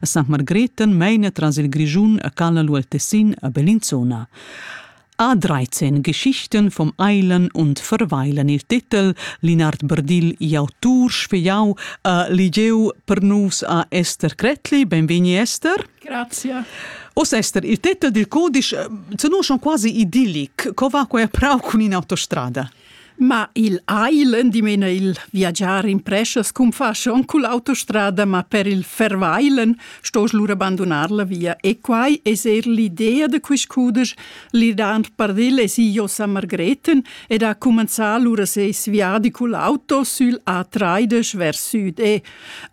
A St. Margreten meina tras il Grischun a Calla lu al Tessin a Bellinzona. A 13 Geschichten vom Eilen und Verweilen il titel Linard Berdil i autur sfegliau a Ligeu per nus a Esther Cretli. Benvegni Esther. Grazie. Os Esther, il titel dil codice eh, se non quasi idillic, co va quella prau cun in autostrada? Ma il ai l'endimena il viagiar in preschas cum fa schon cul autostrada, ma per il verweilen stosch lura bandonar la via. E quai es eir l'idea da quist cudesch L'idant pardil es io Sa Margreten ed ha cumanzà lura seis viadi cul auto sül A30 vers süd e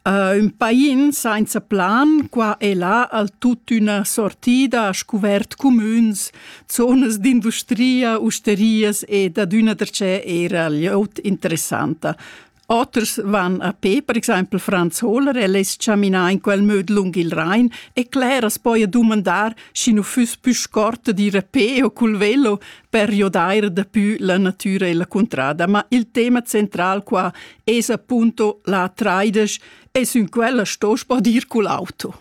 uh, ün pain sainza plan qua e là al tuttüna sortida a scuvert cumüns, zonas d'industria, usterias ed adüna darcheu era glieud interessanta. Oters van a pe, per exempel Franz Hohler, el es chaminà in quel möd lung il Rhein e cler as poja dumandar, schi nu füss pü scorta d'ir a pe o cul velo per giodair dapü la natüra e la cuntrada. Ma il tema central qua es appunto la traidesch e sün quella sto spadir cul auto.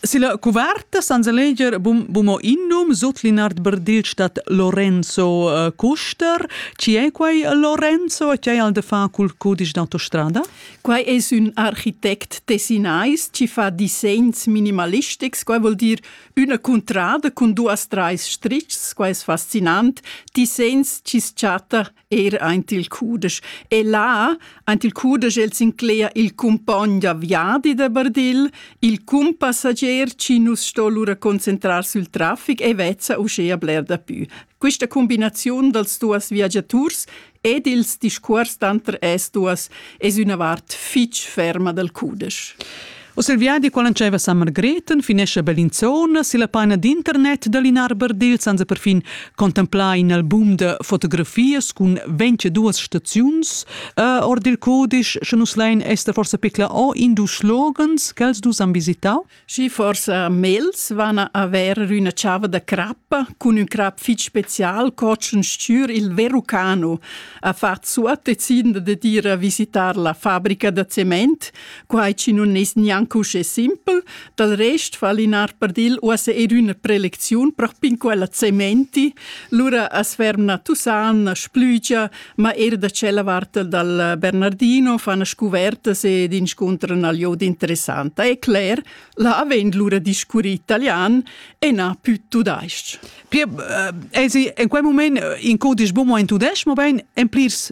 Silla cuverta sans leger bum, bumo innum sut Linard Berdil stat Lorenzo uh, Kuster. Ci è quai Lorenzo e ci è al de fa cul cudisch d'autostrada? Quai es ün architect tessinais ci fa disegns minimalistics. Quai vuol dir üna cuntrada cun duas trais strichs. Quai es fascinant. Disegns ci s-chatta er aint il cudesch. E là, aint il cudesch el s'inclea il cumpogn da viadi da Bardill, il cumpassager chi nus sto lura concentrar sül trafic e vezza uschea bler dapü. Quista combinaziun dals duos viagiaturs ed ils discuors tanter es duos es üna vart fich ferma dal cudesch. Uss il viadi qual antscheva San Margrethen finescha Bellinzona silla paina d'internet da Linarber dil senza perfin contemplar in album da fotografias cun 22 staziuns uh, ord il codice sche nus lein ester forsa picla o in dus slogans che els dus han visitau Sì forsa mels van a haver üna chava da crappa cun un crap fitg special cocen stür il Verucano a fat suot decidende de dire a visitar la fabrica da cement Quai chi nun es gnanc uschè simpel, dal rest fa Linar Pardil uossa eir üna prelecziun propin quella Cementi, lura as ferma Tusan, a Splügia, ma eir da tschella vart dal Bernardino fan scuvertas ed inscuntran al jod interessanta. E cler, là avend lura discurri italian e na più tudais-ch. Pie, eh, esi in quel moment in codisch bumo in tudesc, mobein en plirs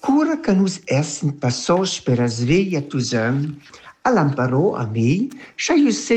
Cura che nus essan passos per la sveglia d'usaun, ha l'amparò a mi, scha jeu seigi